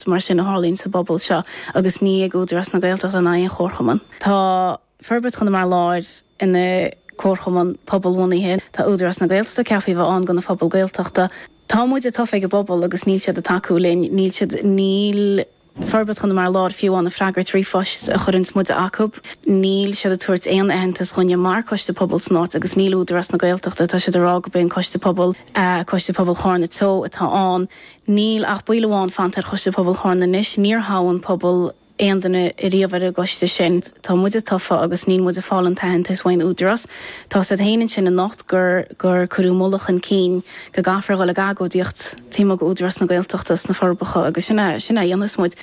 Is mar sin a tharlaíonn sa bpobal seo agus ní hé Údarás na Gaeltachta ná aon chomharchumann. Tá Forbairt Chonamara Láir ina comharchumann pobalbhunaithe. Tá Údarás na Gaeltachta ceaptha a bheith ann do na pobail Gaeltachta. Tá muide tofa ag an bpobal agus níl siad ag tacú linn. Níl siad, níl Forbairt Chonamara Láir fiú amháin ag freagairt ríomhphoist a chuireanns muide acu. Níl siad ag tabhairt aon aitheantas dhúinne mar coiste pobail san áit agus níl Údarás na Gaeltachta, tá siad ag rá gurb é an coiste pobail, Coiste Pobail Chárna Teo atá ann. Níl ach ball amháin fanta ar Choiste Pobail Chárna anois. Níor thogh an pobal aon duine riamh ar an gcoiste sin. Tá muide tofa agus níl muid ag fáil an t-aitheantas uaidh an Údarás. Tá sé ina ansin anocht gur gur cuireadh moladh chun cinn go gcaithfear a dhul ag agóidíocht taobh amuigh d'Údarás na Gaeltachta sna Forbacha agus sin a sin a dhéanfas muid.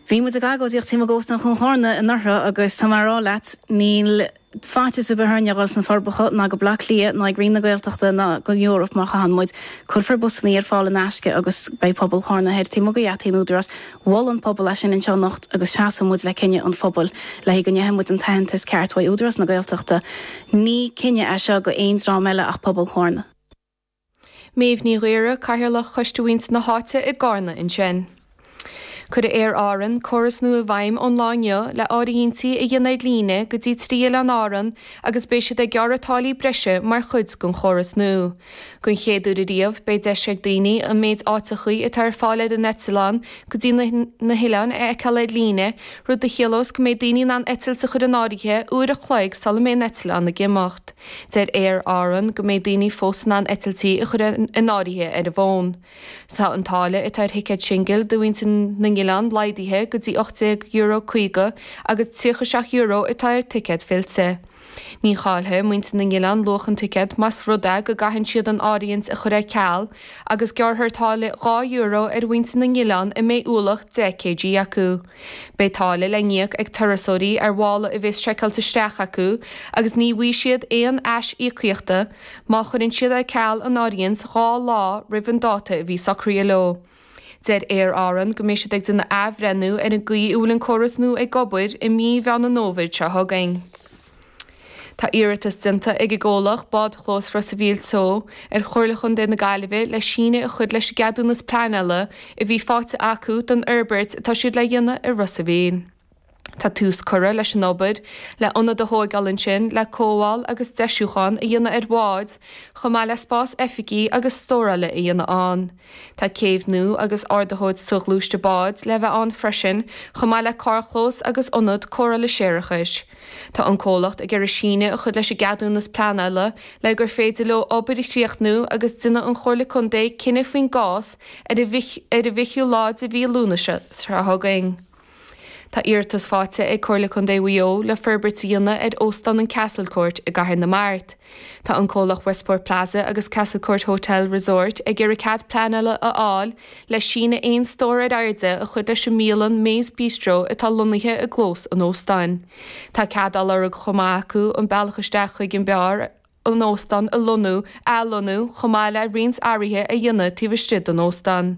Bhí muid ag agóidíocht taobh amuigh d'Óstán Chuan Chárna anuraidh agus tá mé a rá leat níl faitíos ar bith orainne a dhul sna Forbacha ná go Baile Átha Cliath ná ag Roinn na Gaeltachta ná go Europe má chaitheann muid. Cuirfear busannaí ar fáil in aisce agus beidh pobal Chárna thoir taobh amuigh de gheataí an Údarás. Mhol an pobal é sin anseo anocht agus seasfaidh muid le cinneadh an phobail le go bhfaighidh muid an t-aitheantas ceart uaidh Údarás na Gaeltachta. Ní cinneadh é seo do aon dream eile ach pobal Chárna. Méabh Ní Ghaora, Cathaoirleach Choiste Mhuintir na hÁite i gCárna ansin. Cuirfidh Aer Árann córas nua i bhfeidhm ón lá inniu le áirithintí a dhéanamh ar líne go dtí trí Oileán Árann agus beidh siad ag gearradh táillí breise mar chuid den chóras nua. Don chéad uair ariamh beidh deis ag daoine an méid áiteachaí atá ar fáil ar an eitleán go dtí na hoileáin a fheiceáil ar líne, rud a chiallós go mbeidh daoine in ann eitilt a chur in áirithe uair a chloig sula mbeidh an eitleán ag imeacht. Deir Aer Árann go mbeidh daoine fós in ann eitiltí a chur in áirithe ar an bhfón. Tá an táille atá ar thicéad singil do mhuintir na n-oileán laghdaithe go dtí €18, 50 agus €37 atá ar thicéad fillte. Ní chaillfidh muintir na n-oileán luach an ticéid más rud é go gcaitheann siad an áirithint a chur ar ceal agus gearrfar táille €2 ar mhuintir na n-oileán a mbeidh ualach 10 kg acu. Beidh táille le n-íoc ag turasóirí ar mhála a bheas seiceáilte isteach acu agus ní bhfaighidh siad aon ais-íocaíochta má chuireann siad ar ceal an áirithint dhá lá roimh an dáta a bhí socraithe leo. Deir Aer Árann go mbeidh siad ag déanamh athbhreithniú ar an gcaoi a bhfuil an córas nua ag obair i mí Mheán an Fhómhair seo chugainn. Tá iarratas déanta ag an gcomhlacht Bádchlós Ros a' Mhíl Teo ar Chomhairle Chontae na Gaillimhe le síneadh a chur leis an gceadúnas pleanála a bhí faighte acu don fhorbairt atá siad le dhéanamh i Ros a' Mhíl. Tá tús curtha leis an obair le ionad a thóigeáil ansin le cothabháil agus deisiúchán a dhéanamh ar bháid chomh maith le spás oifigí agus stórála a dhéanamh ann. Tá céibh nua agus ardaitheoir soghluaiste bád le bheith ann freisin chomh maith le carrchlós agus ionad cóireála séarachais. Tá an comhlacht ag iarraidh síneadh a chur leis an gceadúnas pleanála le gur féidir leo obair a chríochnú agus déanfaidh an Chomhairle Contae cinneadh faoin gcás ar an bhfichiú lá de mhí Lúnasa seo chugainn. Tá iarratas faighte ag Comhairle Contae Mhaigh Eo le forbairt a dhéanamh ar Óstán an Castlecourt i gCathair na Mart. Tá an comhlacht Westport Plaza agus Castlecourt Hotel Resort ag iarraidh cead pleanála a fháil le síneadh aon stór ar airde a chur leis an mbialann May's Bistro atá lonnaithe i gclós an óstáin. Tá cead á lorg chomh maith acu an bealach isteach chuig an mbeár an óstán a lonnú, athlonnú, chomh maith le roinnt athruithe a dhéanamh taobh istigh den óstán.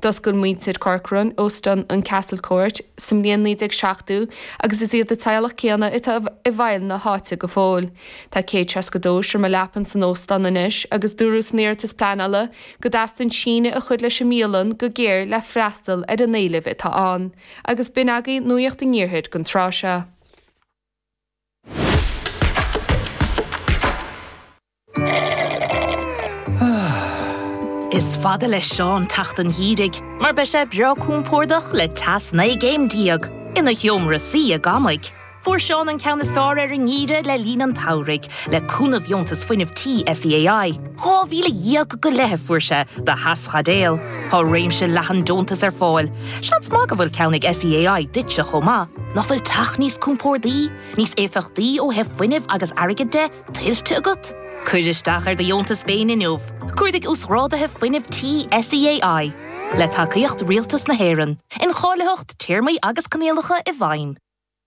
D'oscail muintir Corcoran óstán an Castlecourt sa mbliain 1970 agus is iad an teaghlach céanna atá i bhfeighil na háite go fóill. Tá 162 seomra leapan san óstán anois agus dúradh san iarratas pleanála go dteastaíonn síneadh a chur leis an mbialann go géar le freastal ar an éileamh atá ann agus b'in agaibh nuaíocht an iarthair don tráth seo. Is fada le Seán teacht an gheimhridh mar beidh sé breá compordach le teas 19 gcéim ina sheomra suí ag amaigh. Fuair Seán an ceann is fearr ar an ngeimhreadh le linn an tsamhraidh, le cúnamh dheontas fuinnimh Tí SEAI. Dhá mhíle dhéag go leith a fuair sé do theaschaidéal. Tá réimse leathan deontas ar fáil. Seans maith go bhfuil ceann ag SEAI duitse chomh maith. Nach bhfuil teach níos compórdaí, níos éifeachtaí ó thaobh fuinnimh agus airgid de, tuillte agat? Cuir isteach ar do dheontas féin inniu. Cuardaigh Uasghráduithe Fuinnimh Tí SEAI. Le tacaíocht Rialtas na hÉireann. Incháilitheacht, Téarmaí agus Coinníollacha i bhfeidhm.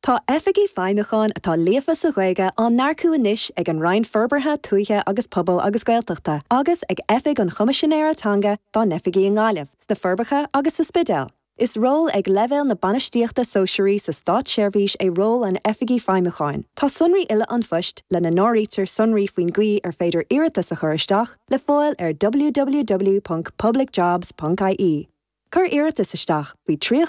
Tá Oifigigh Feidhmiúcháin atá líofa sa Ghaeilge á n-earcú anois ag an Roinn Forbartha Tuaithe agus Pobail agus Gaeltachta agus ag Oifig an Choimisinéara Teanga dá n-oifigí i nGaillimh, sna Forbacha agus sa Spidéal. Is ról ag leibhéal na bainistíochta sóisearaí sa státseirbhís é ról an Oifigigh Feidhmiúcháin. Tá sonraí uile an phoist, lena n-áirítear sonraí faoin gcaoi ar féidir iarratas a chur isteach, le fáil ar www.publicjobs.ie. Cuir iarratas isteach faoi trí a chlog ar an Luan 29 Samhain.